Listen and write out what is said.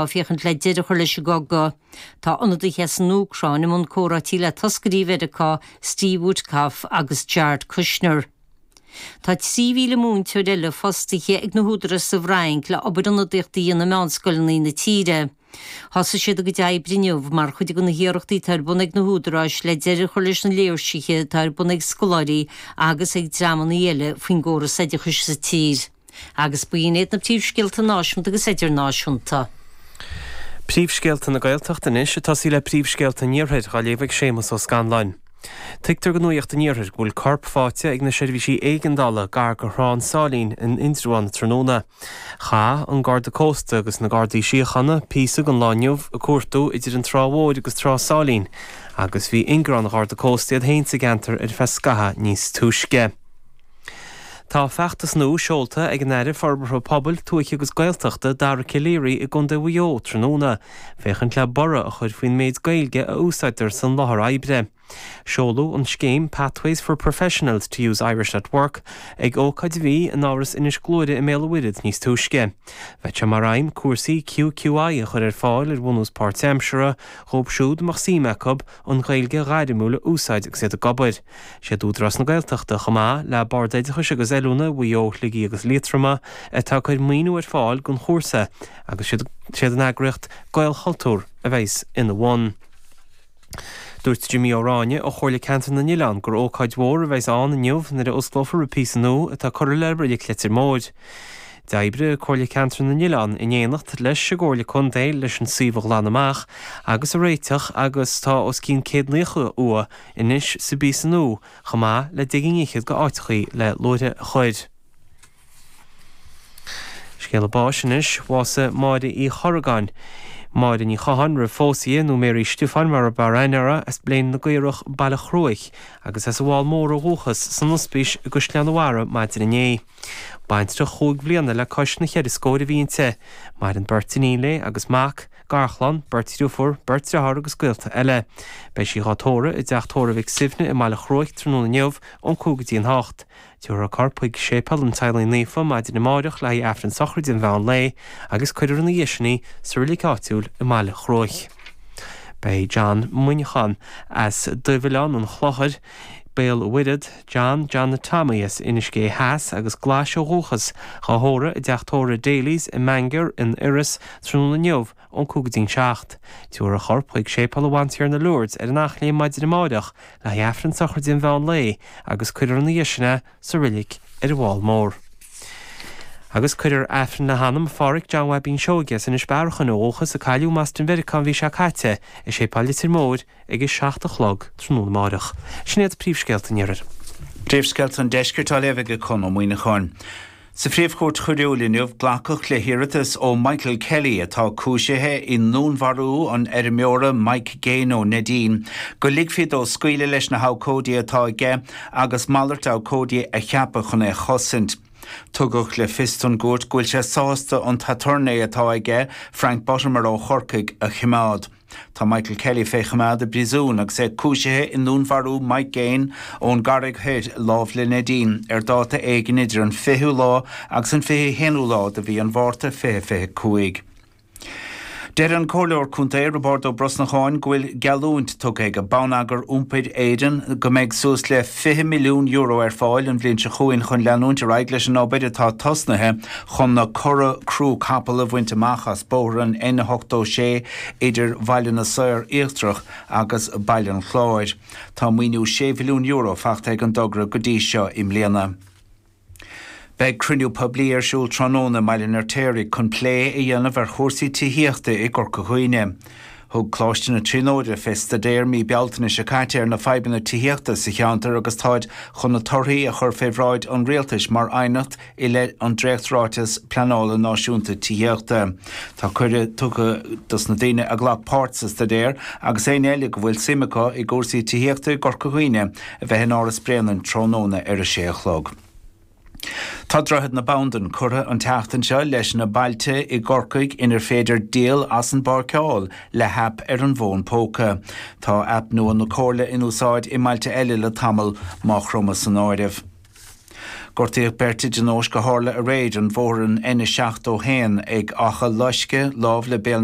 féachaint le deireadh a chur leis an gcogadh. Tá ionadaithe as an Úcráin i mbun comhráití le toscairí Mheiriceá, Steve Witkoff agus Jared Kushner. Tá 3,000 múinteoir eile fostaithe ag na húdaráis sa bhFrainc le obair ionadaíochta a dhéanamh i meánscoileanna na tíre. Thosaigh siad a gcuid oibre inniu mar chuid de na hiarrachtaí atá ar bun ag na húdaráis le deireadh a chur leis na léirsithe atá ar bun ag scoláirí agus ag dreamanna eile faoin gcóras oideachais sa tír. Agus b'in iad na príomhscéalta náisiúnta agus idirnáisiúnta. Príomhscéalta na Gaeltachta anois ag tosaí le príomhscéalta an Iarthair á léamh ag Séamas Ó Scanláin. Tuigtear do Nuacht an Iarthair go bhfuil corp fáite ag na seirbhísí éigeandála gar do Thrá an tSáilín in Indreabhán tráthnóna. Chaith an Garda Cósta agus na Gardaí Síochána píosa den lá inniu ag cuartú idir an Trá Mhór agus Trá Sáilín agus bhí ingearán an Gharda Cósta iad féin sa gceantar ar feadh scaitheamh níos túisce. Tá feachtas nua seolta ag an Aire Forbartha Pobail, Tuaithe agus Gaeltachta, Dara Calleary i gContae Mhaigh Eo tráthnóna féachaint le borradh a chur faoin méid Gaeilge a úsáidtear san láthair oibre. Seoladh an scéim Pathways for Professionals to use Irish at Work ag ócáid a bhí in Áras Inis Gluaire i mBéal an Mhuirthead níos túisce. Bheadh sé mar aidhm cúrsaí QQI a chur ar fáil ar bhunús páirtaimseartha dhóibh siúd a mbeadh suim acu, an Ghaeilge ghairmiúil a úsáid agus iad ag obair. Is iad Údarás na Gaeltachta, chomh maith le Bord Oideachais agus Oiliúna Mhaigh Eo, Shligigh agus Liatroma, atá ag cur maoiniú ar fáil don chúrsa agus is iad an eagraíocht Gaelchultúr a bheas ina bhun. Dúirt Jimí Ó Ráinne ó Chomhairle Ceantair na nOileán gur ócáid mhór a bheas ann inniu nuair a osclófar an píosa nua atá curtha le Reilig Leitir Móir. D'oibrigh Comhairle Ceantair na nOileán in éineacht leis an gComhairle Contae leis an suíomh a ghlanadh amach agus a réiteach agus tá os cionn 190 uaigh anois sa bpíosa nua chomh maith le deich gcinn fhichead de áiteachaí le luaithe a chur. Scéala báis anois, bhásaigh Máire Uí Chorragáin, Máire Ní Chatháin roimh phósadh di, nó Mary Stiofáin mar ab fhearr aithne uirthi, as Bléan na gCaorach, Baile Chruaich, agus as an bhFál Mór ó dhúchas san ospís i gCaisleán a' Bharra maidin inné. Baintreach chúig bhliana le cois na cheithre scóir a bhí inti. Maireann beirt iníon léi agus mac, garchlann, beirt dhriofúr, beirt deartháir agus gaolta eile. Beidh sí dhá tórramh i dTeach Tórraimh Mhic Suibhne i mBaile Chruaich tráthnóna inniu, ón cúig go dtí an hocht. Tiúrfar a corp chuig Séipéal an Teaghlaigh Naofa maidin amáireach le haghaidh Aifreann Sochraide an mheán lae agus cuirfear ina dhiaidh sin í sa roilig áitiúil i mBaile Chruaich. Beidh John Muineachán as Dubhoileán an Chlochair, Béal an Mhuirthead, John Johnny Tommy as Inis Gé Theas agus Glais ó dhúchas, dhá thórramh i dteach tórraimh Daly's i mBangor in Iorras tráthnóna inniu ón cúig go dtí an seacht. Tabharfar a chorp chuig Séipéal a Bhantiarna Lourdes ar an Eachléim maidin amáireach le haghaidh Aifreann sochraide an mheán lae agus cuirfear ina dhiaidh sin é sa roilig ar an bhFál Mór. Agus cuirfear Aifreann le hanam Pháraic John Bhaibín Seoige as Inis Bearachain ó dhúchas a cailleadh i mBoston Mheiriceá an mhí seo caite i Séipéal Leitir Móir ag a seacht a chlog tráthnóna amárach. Sin iad príomhscéalta an iarthair. Príomhscéalta an deiscirt á léamh ag Conn Ó Muíneacháin. Sa Phríomh-Chúirt Choiriúil inniu, glacadh le hiarratas ó Michael Kelley, atá cúisithe i ndúnmharú an fheirmeora Mike Gaine ó Neidín, go ligfí dó scaoileadh leis na habhcóidí atá aige agus malairt abhcóidí a cheapadh chun é a chosaint. Tugadh le fios don gcúirt go bhfuil sé sásta an t-aturnae atá aige, Frank Buttimer ó Chorcaigh, a choimeád. Tá Michael Kelley fé choimeád i bpríosún agus é cúisithe i ndúnmharú Mike Gaine ón gCarraig Thoir, lámh le Neidín, ar dáta éigin idir an 20ú lá agus an 21ú lá de mhí an Mhárta 2025. Deir an Comhairleoir Contae, Roibeárd Ó Brosnacháin, go bhfuil geallúint tugtha ag Bonneagar Iompair Éireann go mbeidh suas le €20 milliún ar fáil an bhliain seo chugainn chun leanúint ar aghaidh leis an obair atá tosnaithe Chun na cora crú capaill a bhaint amach as bóthar an N86 idir Bhaile na Saor Íochtarach agus Baile an Chláir, tá maoiniú €6 mhilliún faighte ag an dtogra go dtí seo i mbliana. Beidh cruinniú poiblí ar siúl tráthnóna i mBaile an Fheirtéaraigh chun plé a dhéanamh ar chúrsaí tithíochta i gCorca Dhuibhne. Thug Coláiste na Tríonóide fé staidéar mí Bealtaine seo caite ar na fadhbanna tithíochta sa cheantar agus táid chun na torthaí a chur fé bhráid an Rialtais mar aighneacht i leith an Dréacht-Ráiteas Pleanála Náisiúnta Tithíochta. Tá cuireadh tugtha dos na daoine a ghlac páirt sa staidéar agus éinne eile go bhfuil suim acu i gcúrsaí tithíochta i gCorca Dhuibhne a bheith in Áras Bréanainn tráthnóna ar a sé a chlog. Tá Droichead na Bandan curtha an tseachtain seo leis na bailte i gCorcaigh inar féidir díol as an bpáirceáil le happ ar an bhfón póca. Tá app nua na Comhairle in úsáid i mbailte eile le tamall, Maigh Chromtha san áireamh. Gortaíodh beirt i dtionóisc a tharla aréir ar bhóthar an N71 ag Achadh Loisce, lámh le Béal na.